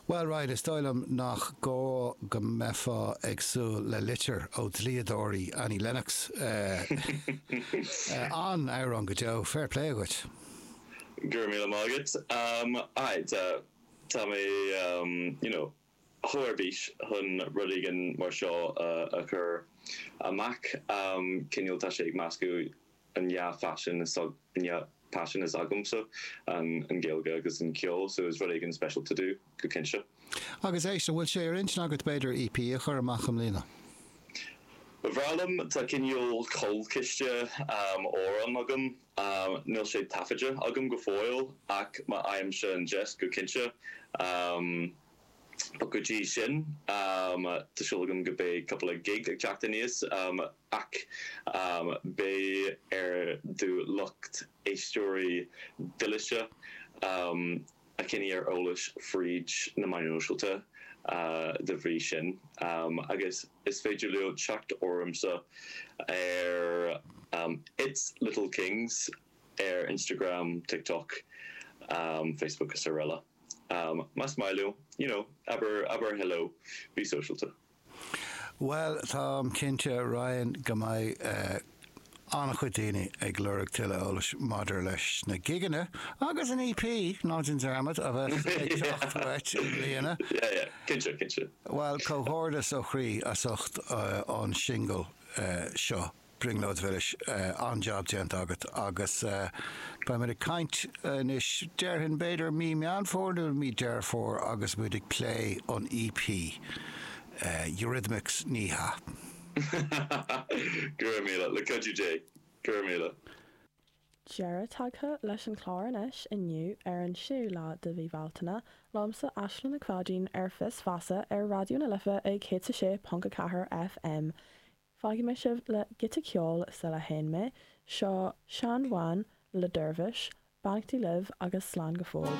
Bhuel, Ryan, is dóigh liom nach gá go mbeifeá ag súil le litir ó dlíodóirí Annie Lennox. An-amhrán go deo, fair play dhuit! Go raibh míle maith agat. Aye, tá, tá mé, you know. chomh ar bís chun rud éigin mar seo a chur amach. Cineál tá sé ag meascadh an dhá phaisean is an dhá paisean is agamsa, an Ghaeilge agus an ceol, so is rud éigin special to do go cinnte. Agus éist, an bhfuil sé ar intinn agat b'fhéidir EP a chur amach i mbliana? Ba bhreá liom, tá cineál cúlchiste amhrán agam Níl siad taifeadta agam go fóill ach má fhaighimse an deis go cinnte. But go dtí sin, tá súil agam go mbeidh cúpla gig ag teacht aníos ach beidh ar do lucht éisteoirí dílis a choinneáil ar eolas fríd na meáin shóisialta dá bhrí sin agus is féidir leo teacht ormsa ar It's Little Kings ar Instagram, TikTok, Facebook is araile. Más maith leo, you know, abair hello, bí sóisialta. Bhuel, táim cinnte, Ryan, go mbeidh an-chuid daoine ag lorg tuilleadh eolais maidir leis na gigeanna agus an EP, ná déan dearmad, a bheas ag teacht uait i mbliana. Yeah, yeah. Cinnte, cinnte. Bhuel, comhghairdeas ó chroí as ucht an singil seo. Brionglóid mhilis. An-jab déanta agat. Agus beidh muid ag caint anois, déarfainn, b'fhéidir mí Meán Fómhair nó mí Deireadh Fómhair agus muid ag plé an EP, Eurythmics, ní hea. Go raibh míle. Le cuidiú Dé. Go raibh míle. Deireadh tagtha leis an chlár anois, inniu, ar an séú lá de mhí Bhealtaine, liomsa Aisling Nic Pháidín, ar Fios Feasa ar Raidió na Life ag 106.4 FM Fágfaidh mé sibh le giota ceoil sula théann mé, seo Seán Bháin le Dervish, beannachtaí libh agus slán go fóill.